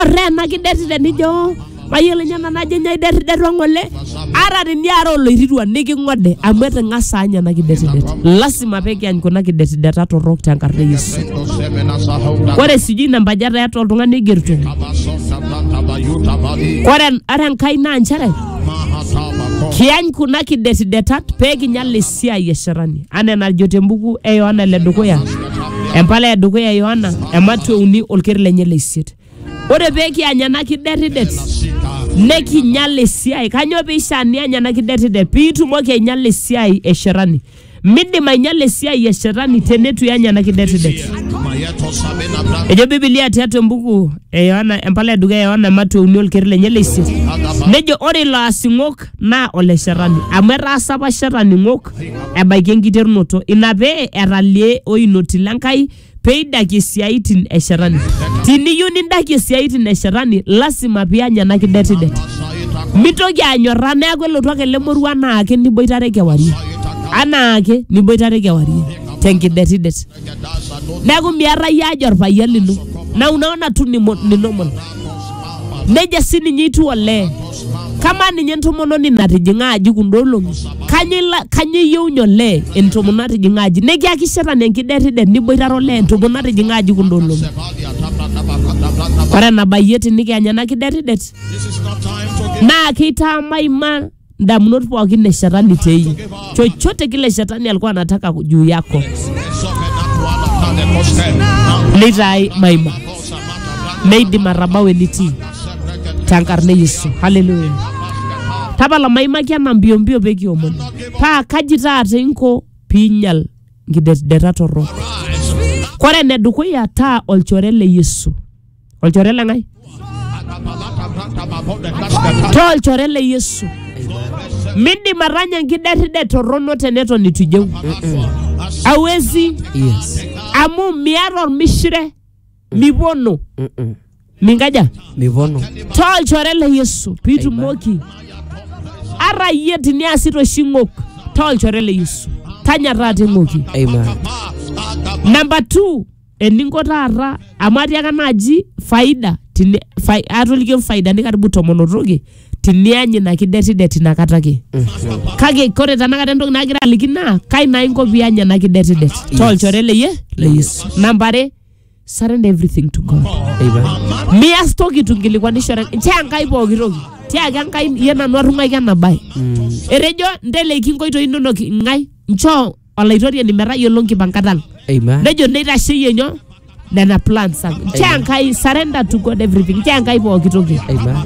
Ore ena kideti tenijo mayiolo ninye nanu ajo nyoo iderriderua ng'ole ata teniara oloirirua niking'ode amu eting'asa anya ena kidetidet lasima pekiany kuna kidetideta torrok tenkarna e Yesu ore sijui ina mbaji etaa eeta oltung'ani oigerito ore ore enkai naa nchere kiany kuna kidetidetat pekinyal esiai e shetani anaa enajo tembuku e Yohana ele dukuya Empala e dukuya e Yohana ematua uni olker lenye le isiet. Ore pee kianya ena kiderridet nekinyal esiai. Kanyoo pee ishaa niany ena kiderridet? Pee itumoki ainyala esiai e shetani. Midim ainyala esiai e shetani teneitu iany ena kiderridet. Ejo Biblia tiatua embuku e Yohana, empala e dukuya e Yohana ematua uni olker lenye le isiet. Nejo ore ilo asing'ok naa ole shetani amu etaasa apa shetani ng'ok ebaiki enkiterunoto ina pee etalie oinoti le Nkai peidakie isiaitin e shetani tiniyieu nindakie isiaitin e shetani lasima piany ena kidetidet mitoki anyorraa neeku elotu ake ele moruo anaake niboitare kewarie anaake niboitare kewarie tenkidetidet neeku miarra iyie aja orpayian lino na unaona tu ni, mo- ni normal nejia sininye itiu olee kamaa ninye entomononi natijing'a aji kunda olong'i kanyio ila- kanyio iyieunye olee entomononi natijing'a aji nikiakisheta na enkidetidet niboitare olee entomononi natijing'a aji kunda olong'i ore enabayie tinikianya ena kidetidet naa keitaamaima ndamunot pookin e shetani te iyie chochote kile shetani alikuwa anataka juu yako neitaai maima meidim atabau enitii tenkarna e yesu haleluya tapala maimaki ena mbiombio pee kiomon paa kaji taata inko piinyal nkidetideta torrok kore enedukuya taa olchore le yesu olchore le ng'ae taa olchore le yesu mindim atanya enkiderridet torrono teneton itu ijeu awezi Yes. amu miata ormishire mipono Mm-mm. minkaja Mipono. taa olchore le yesu piitumoki ara iyie tiniasita oshi ng'ok taa olchore le yesu tanya taata eng'oki Amen. namba 2 eninko taata amu atiaka naaji faida tini- fai- atoliki faidani karibu tomon otoki tiniany ina kidetidet inakata ake kake kore tanakata entoki nagira aliki naa kai naa inko pianya ena kidetidet tolchore leye le yesu namba are surrender everything to god Eipa. mias toki tunkilikwanishore tia nkai pooki toki tiaki enkai ye nanu atung'aiki ena bae etejo nteleki nkoitoi inonok ng'ae nchoo olaitoriani metayiolo nkipankat ang Amen. nejo neitasheyie nyoo nena plans ang nchoo enkai surrender to god everything nchoo enkai pooki toki Amen.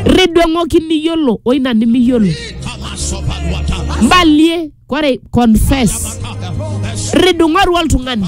ridweng'oki niyiolo oina nimiyiolo mbalie kore confess ridung'oru oltung'ani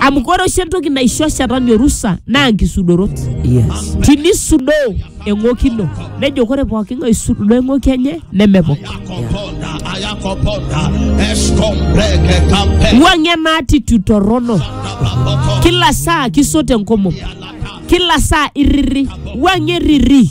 amu ore oshi entoki naisho shetani orusa naa nkisudorot Yes. tinisudoo eng'oki ino nejo ore pooki ng'ae oisudoo eng'oki enye nemepok Ayakoponda, ayakoponda, eskombreke kampe, wuang'ie ena attitude torrono kila saa kisot enkomom kila saa irriri wuang'ie rriri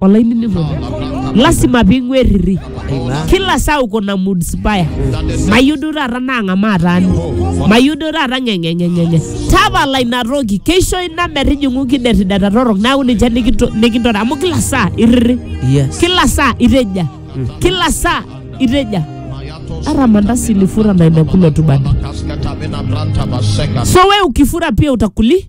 olainining'oni lasima ping'uerriri Aina. kila saa uko na mood spaya mayieu duo taata naang'amaa taani mayieu duo taata ng'eng'eng'eng'eng'e tapala ina toki keisho ina metijing'u kiderideta torrok neaku ninche nikinto- nikintore amu kila saa irriri Yes. kila saa iteja kila saa iteja hata mandasi ilifura na imekula tu bado so we ukifura pia utakuli